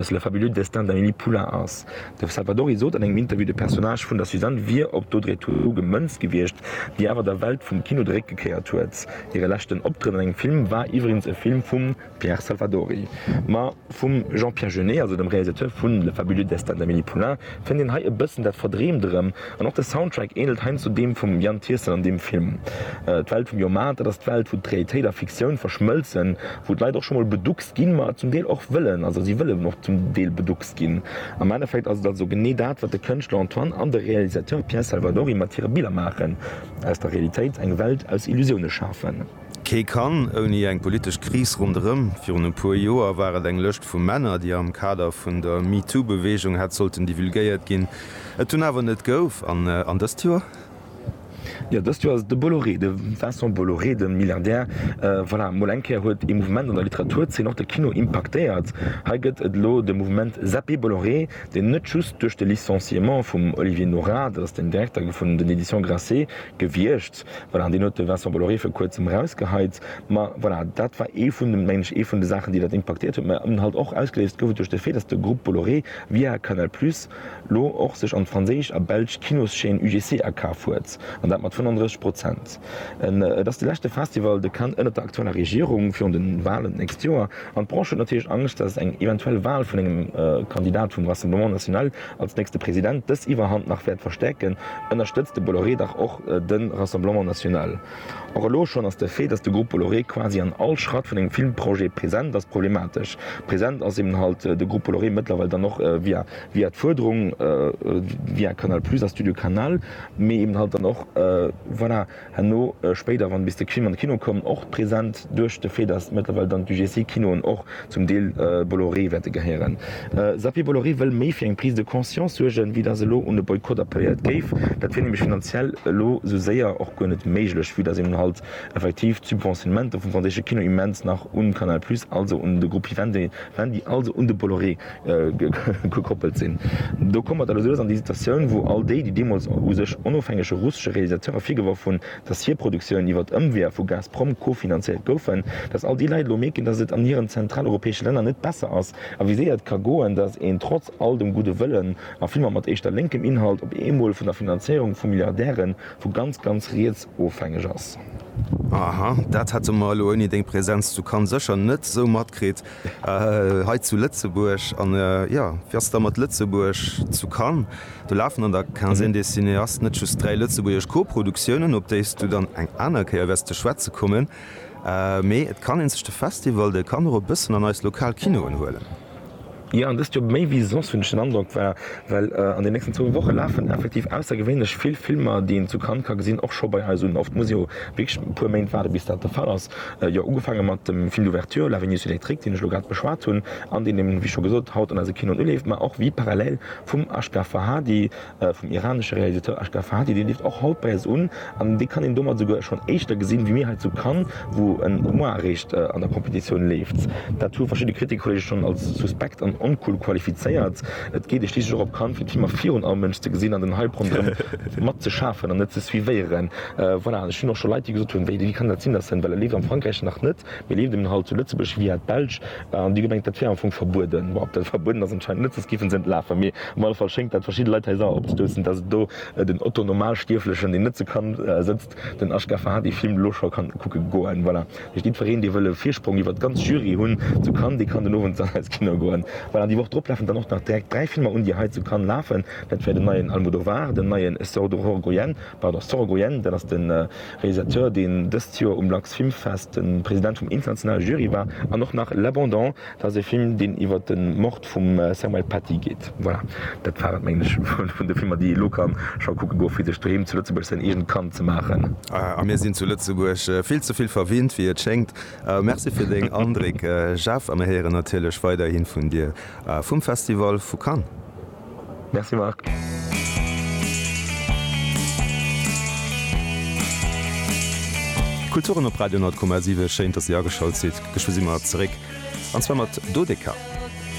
datt Le fabuleux destin d'Amélie Poulain ass. De Salvadori sot an engem Interview, de Personnage vun der Suzanne wier op d'Audrey Tautou gemënzt gewiescht, déi awer der Welt vum Kino de Réck gekéiert huet. Hire leschten Optrëtt an engem Film war iwwregens e Film vum Pierre Salvadori, ma vum Jean-Pierre Jeunet, also dem Realisateur vu Le fabuleux destin d'Amélie Poulain, Fënnt een hei e bëssen dat Verdreemt erëm, an och de Soundtrack änelt heiansdo deem vum Yann Tiersen an deem Film. D'Welt vum Jomaat, dat ass d'Welt wou d'Realitéit a Fiktioun verschmëlzen, wou d'Leit och scho mol beduckst ginn, ma zum Deel och wëllen, also si wëllen och zum Deel beduckst ginn. Am Endeffekt ass et also genee dat, wat de Kënschtler Antoine an de Realisateur Pierre Salvadori mat hire Biller maachen, aus der Realitéit eng Welt aus Illusioune schafen. Kee kann ouni eng politesch Kris ronderëm. Virun e puer Joer war et eng Lëscht vu Männer, déi am Kader vun der MeToo-Beweegung hätt sollten divulgéiert ginn, et dunn awer net gouf. An an dëst Joer? Jo, dëst Joer ass et de Bolloré, de Vincent Bolloré, de Milliardär. Voilà, mol eng Kéier huet ee Mouvement an der Literaturzeen och de Kino impaktéiert. Hei gëtt et elo de Mouvement Zappé Bolloré, deen net just duerch de Licenciement vum Olivier Nora, dat ass den Direkter vun den Editions Grasset, gewiescht, Voilà, deen huet de Vincent Bolloré vir kuerzem erausgeheit. Ma voilà, dat war ee vun de, mengen ech, ee vun de Saachen, déi dat impaktiert huet. Mä eben halt och ausgeléist gouf et duerch de Fait, dass de Groupe Bolloré via Canal Plus lo och sech an d'franséisch a belsch Kinoschaîne UGC akaf huet, an dat mat 35 Prozent. Et ass de leschte Festival de Cannes ënnert der aktueller Regierung, virun de Wahlen d'nächst Joer. An d'Branche huet natierlech Angscht, dass eng eventuell Wahl vun engem Kandidat vum Rassemblement National als nächste President dës Iwwerhand nach wäert verstäerken, ënnerstëtzt de Bolloré dach och de Rassemblement National. Och elo schonn ass de Fait, datt de Grupp Bolloré quasi an all Schratt vun engem Filmprojet present ass, problematesch. Present ass eben halt de Grupp Bolloré mëttlerweil dann och via via d'Fuerderung via Canal Plus a Studio Canal, mee eben halt dann och voilà, Herno spéider, wann bis de Krim an de Kino koum, och present duerch de Fait, datt mëttlerweil dann d'UGC-Kinoen och zum Deel Bolloré wäerte gehéieren. Xavier Bolloré wëll méi fir eng Prise de conscience suergen, wéi datt elo un e Boykott appelléiert géif. Dat wier nämlech finanziell elo esou séier och guer net méiglech, vue datt een halt effektiv d'Subventionnementer vum franséische Kino immens nach un Canal Plus, also un de Groupe Vivendi, also un de Bolloré, gekoppelt sinn. Do komme mer dann esou lass an déi Situatioun, wou all déi, déi deemools u sech onofhängege russesche Realisateurer virgeworf hunn, dass hir Produktiounen iwwert Ëmweeër vu Gazprom kofinanzéiert goufen, dass all déi Leit elo mierken, dass et an hiren zentraleuropäesche Länner net besser ass a wéi séier et ka goen, dass een trotz all dem gudde Wëllen a vill manner mat éischter lénkem Inhalt op eemol vun der Finanzéierung vu Milliardäre vu ganz, ganz riets ofhängeg ass. Aha, dat hätte mer elo ouni deng Präsenz zu Cannes sécher net esou matkritt. Hei zu Lëtzebuerg, an jo, wéi ass et da mat Lëtzebuerg zu Cannes? Do lafen an der Quinzaine des cinéastes net just dräi lëtzebuergesch Co-Produktiounen, op déi s du dann eng aner Kéier wäers ze schwätze kommen, mee et kann ee sech de Festival, dee kann och e bëssen an eis lokal Kinoen huelen. Jo, an dëst Joer méi wéi soss, hunn ech den Androck, war, well an den nächsten zwou Woche lafen effektiv aussergewéinlech vill Filmer, déi een zu Cannes ka gesinn, och scho bei eis un. Oft muss ee jo wierklech e puer Méint waarde bis dat de Fall ass, Jo, ugefaange mat dem Film d'ouverture, La Vénus électrique, deen ech elo grad beschwat hunn an deen een, wéi scho gesot, haut an eise Kinoen uleeft, mä och Vie parallèle vum Ashgar Farhadi, vum iranesche Realisateur Ashgar Farhadi, dee leeft och haut bei eis un an dee kann een domat esouguer schonn éischter gesinn, wéi mir hei zu Cannes, wou en mois eréischt an der Competitioun leeft. Dat hu verschidde Kritikerkollege schonn als suspekt an oncool qualifizéiert. Et geet ee schliisslech och op Cannes, fir d'Filmer virun allem Mënsch ze gesinn an den Hype ronderëm mat ze schafen an et ze suivéieren. Voilà, ech hunn och scho Leit, déi gesot hunn, wéi, wéi kann dat sinn, dass en, well e leeft am Frankräich nach net, mee leeft en hei zu Lëtzebuerg via d'Belsch an déi gemengt, dat wär am Fong verbueden. Bon, ob dat verbueden ass, anscheinend net, soss géife se net lafen. Mee op alle Fall schéngt dat verschidde Leit hei sauer opzestoussen, dass et do den Otto-Normalstierflechen, deen net zu Cannes sëtzt, Den HKFA hat ee Film elo scho kann kucke goen. Voilà. Mee jiddwereen, dee wëll e Virsprong iwwer d'ganz Jury hunn zu Cannes, dee kann den Owend dann eis Kino goen. Voilà, déi Woch drop lafen dann och nach direkt dräi Filmer un, déi hei zu Cannes lafen. Dat wär den neien Almodovar, den neien Sordohorgoyen, pardon, Sorogoyen, dat ass de Realisateur, deen dëst Joer um Lux Film Fest de President vum internationale Jury war, an och nach L'Abandon, Dat ass e Film, deen iwwer de Mord vum Samuel Paty geet. Voilà, dat war et, mengen ech, vun de Filmer, déi ee lo ka scho kucke goe fir sech doheem zu Lëtzebuerg säin eegent Kand ze maachen. A mir sinn zu Lëtzebuerg vill ze vill verwinnt, wéi et schéngt. Merci fir deng Andréck, Jeff, a mir héieren natierlech weiderhi vun dir vum Festival vu Cannes. Merci Marc. Kulturen op Radio 10,7 schéin dass dir ageschalt sidd. Geschwë si mer zeréck an zwar mat Dodeka.